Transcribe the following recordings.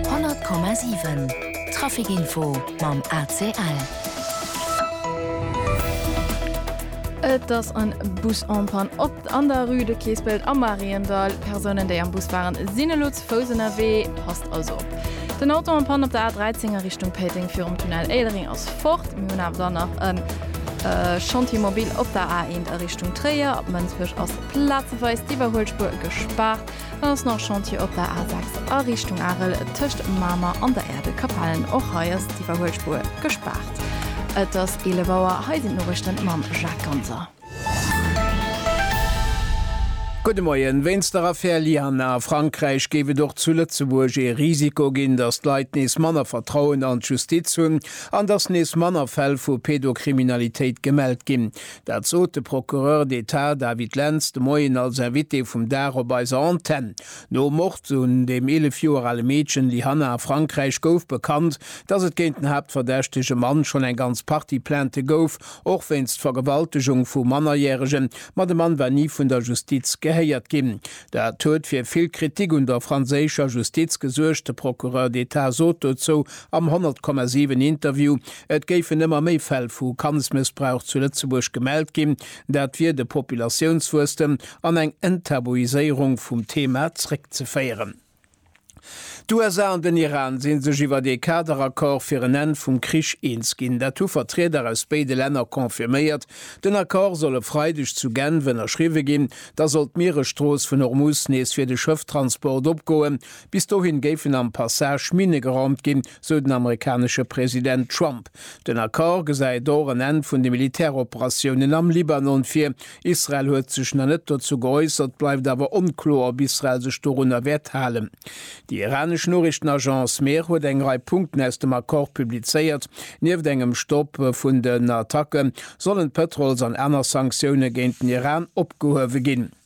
100,7 Trafic Info mam ACL. Et ass en Bus en panne op an der Rue de Keespelt am Mariendall. Persounen déi am Bus waren sinn elo ze Fouss ënnerwee, passt also op. Den Auto en panne op der A13 a Richtung Péiteng virum Tunnel Éilereng ass fort. Mir hunn awer dann nach en Chantier mobile op der A1 a Richtung Tréier. Ab Mënsbech ass plazeweis d'Iwwerhuelspuer gespaart. Dann ass nach Chantier op der A6 a Richtung Arel tëscht Mamer an der Erdekapellen. Och hei ass d'Iwwerhuelspuer gespaart. Et ass 11 Auer, hei sinn d'Noriichten mam Jacques Ganser. Gudde Moien. Wéinst der Affär Lianne a Frankräich géif et och zu Lëtzebuerg ee Risiko ginn, datt d'Leit nees manner Vertrauen an d'Justiz hunn an datt nees manner Fäll vu Pedokriminalitéit gemellt ginn. Dat sot de Procureur d'Etat David Lentz de Moien als Invité vum Dag op eiser Antenn. Nom Mord un dem 11 Joer ale Meedchen Lyhanna a Frankräich gouf bekannt, datt et géint den haaptverdächtege Mann schonn eng ganz Partie Plaintë gouf, och wéinst Vergewaltegung vu Mannerjäregen. Ma de Mann war ni vun der Justiz gehéiert ginn. Dat huet fir vill Kritik un der franséischer Justiz gesuergt. De Procureur d'Etat sot dozou am 100,7 Interview, Et géifen ëmmer méi Fäll vu Kandsmëssbrauch zu Lëtzebuerg gemellt ginn. Dat wier de Populatiounswuesstem an eng Enttabuiséierung vum Thema zréckzeféieren. D'USA an den Iran si sech iwwert ee Kaderaccord fir en Enn vum Krich eens ginn. Dat hu Vertrieder aus béide Länner confirméiert. Den Accord soll e Freideg zu Genf ënnerschriwwe ginn. Da soll d'Mieresstrooss vun Hormuz nees fir de Schëfftransport opgoen. Bis dohin géifen am Passage Minne geraumt ginn, sou den amerikanesche President Trump. Den Accord gesäit och en Enn vun de Militäroperatiounen am Libanon vir. Israel huet sech nach net dozou geäussert, bleift awer onkloer, ob Israel sech dorunner wäert halen. Déi iranesch Noriichtenagence Mehr huet eng Rei Punkten aus dem Accord publizéiert. Nieft engem Stopp vun den Attacke sollen d'Pëtrols an aner Sanktioune géint den Iran opgehuewe ginn.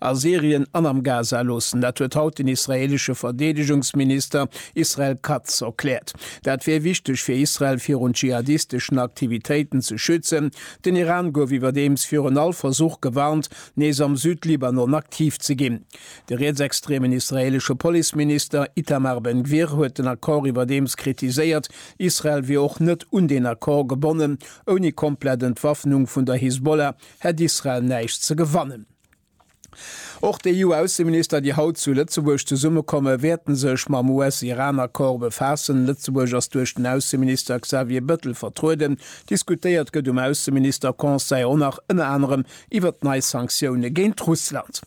a Syrien an am Gaza loossen. Dat huet haut den israeelesche Verdeedegungsminister Israel Katz erkläert. Dat wier wichteg fir Israel virun dschihadisteschen Aktivitéiten ze schützen. Den Iran gouf iwwerdeems virun all Versuch gewarnt, nees am Südlibanon aktiv ze ginn. De rietsextremen israeelesche Policeminister Itamar Ben Gvir huet den Accord iwwerdeems kritiséiert. Israel wier och net un deen Accord gebonnen. Ouni komplett Entwaffnung vun der Hisbollah hätt Israel näischt ze gewannen. Och d'EU-Ausseminister, déi haut zu Lëtzebuerg zesummekomme wäerten sech mam US-Iran-Accord befaassen. Lëtzebuerg ass duerch den Ausseminister Xavier Bëttel vertrueden. Diskutéiert gëtt um Ausseminister-Conseil och nach ënner anerem iwwert nei Sanktioune géint Russland.